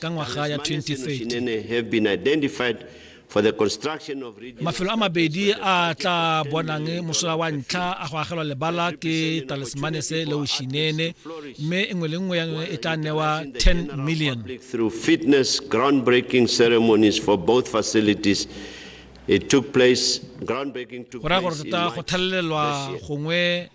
ka ngwaga ya 2030 mafelo a mabedi a tla bonang mosola wa ntlha a go agelwa lebala ke talismane se le oshinene mme engwe le nngwe ya yone e tla newa 10 million through fitness groundbreaking ceremonies for both facilities it took place groundbreaking took place go raya gore tota go thalelelwa gongwe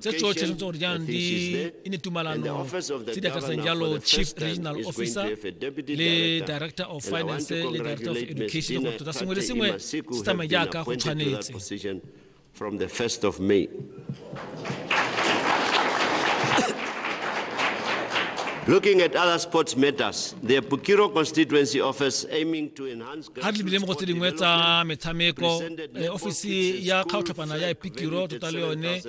tse tsotlhe tshwanetse gore jaanong di e ne tumalano tse di akaretsang jalo chief regional officer le director of finance le director of education gore tota sengwe le sengwe se tsamaye jaaka go tshwanetse from the 1st of May. Looking at other sports matters, the Bukiro constituency office aiming to enhance ga re lebile mo go tse dingwe tsa metshameko eh, ofisi ya kgaotlhapana ya epikiro tota le yone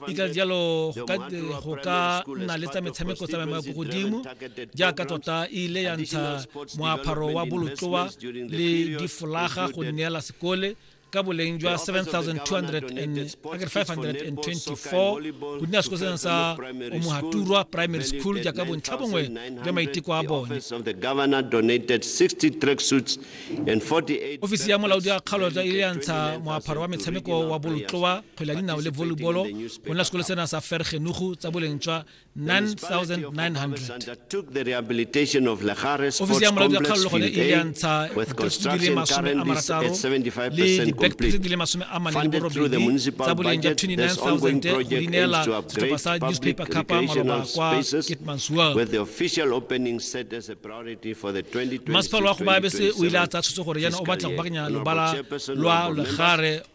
e ka jalo go ka- go ka nna le tsa metshameko tsa maemo a ko godimo jaaka tota e ile ya ntsha moaparo wa bolotloa le difolaga go neela sekole ka boleng jwa 7,524 go dina sekosanang sa omohaturwa primary school jaaka bontlha bongwe jwa maiteko a bone ofisi ya molaodi ya kgaolo tsa ile ya ntsha moapharo wa metshameko wa bolotloa kgwele ya dinao le volleybolo go nna sekolo sena sa fergenugu tsa boleng jwa ofisi ya molaodi wa kgaolo gone e ile ya ntsha dikgetse di le masome a marataro le dibekete di le masome a mane le borobedi tsa boleng ja 29000 go di neela setlhopha sa newspaper capa maloba kwa kitmansua masepala wa go baabese o ile a tsaya tshwetso gore yana o batla go bakanya lobala lwa legare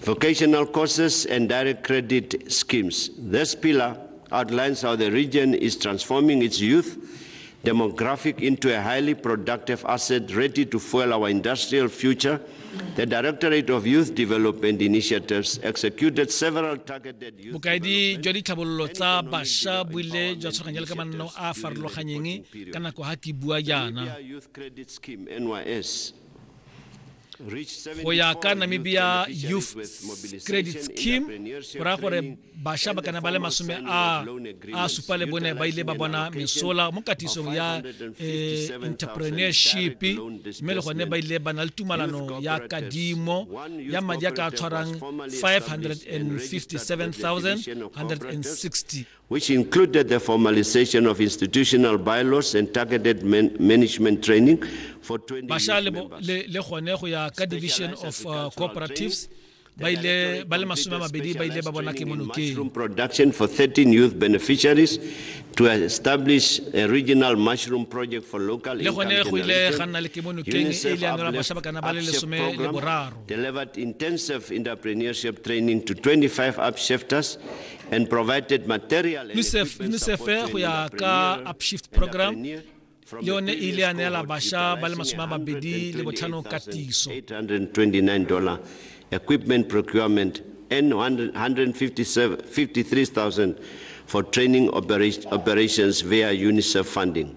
Vocational courses and direct credit schemes. This pillar outlines how the region is transforming its youth demographic into a highly productive asset ready to fuel our industrial future. The Directorate of Youth Development Initiatives executed several targeted youth bokaedi jwa ditlhabololo tsa basha bo ile jwa tshwaganya le ka manno a a farologanyeng ka nako ga ke bua jaana go ya ka namibia youth credit scheme go raya gore bašwa ba kana ba le masome a a supa le bone ba ile ba bona mesola mo katisong ya eh, entrepreneurship mme le gone ba ile ba na le tumalano ya kadimo ya madi a ka tshwarang 557160 which included the formalization of institutional bylaws and targeted man management training for 20 basha le, le, le gone go ya ka division of uh, cooperatives ba ile ba le masome a mabedi ba ile ba bona ke monokeng production for 13 youth beneficiaries to establish a regional mushroom project for local le gone go ile ga nna le ke monokeng e ile ya nela basha ba kana ba le lesome le boraro delivered intensive entrepreneurship training to 25 upshifters UNICEF go ya ka upshift program le yone e ile ya neela basha ba le masome a mabedi le botlhano katiso equipment procurement and 153,000 for training operations via UNICEF funding.